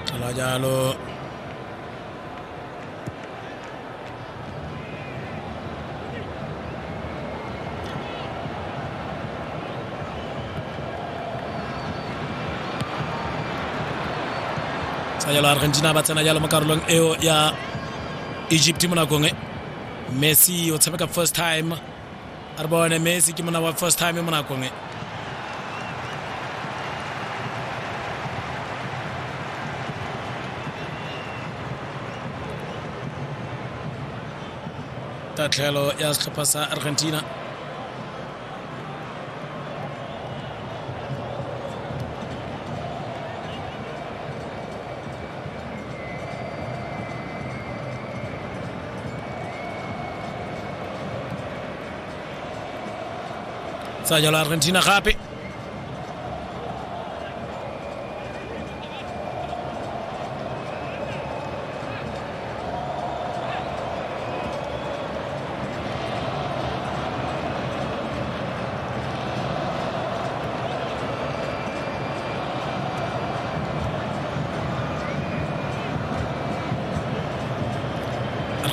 Tlola jalo. tsa jalo argentina ba tsena jalo mo karolong eo ya egypt mo nakong e messi o tshameka first time a re bone messi ke mona wa first time mo nakong e tatlhelo ya setlhopha sa argentina Sa jalo Argentina gape.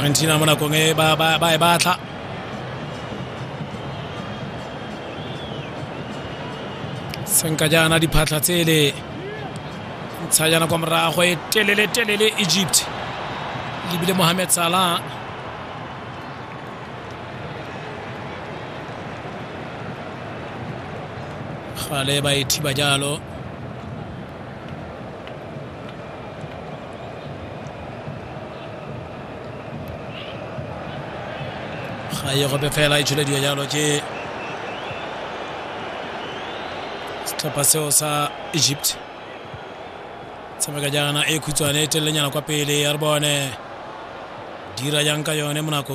argentina mo nakong e ba ba ba e batla senka jaana diphatlha tsele ntsha yana kwa morago e telele telele egypt lebile mohamed salah gale ba e thiba jalo ga ye gope fela e tšholediwa jalo ke setlhopha seo sa egypt tshameka jaana e khutshwane e telelenyana kwa pele ya re bone dira jang ka yone mo nakong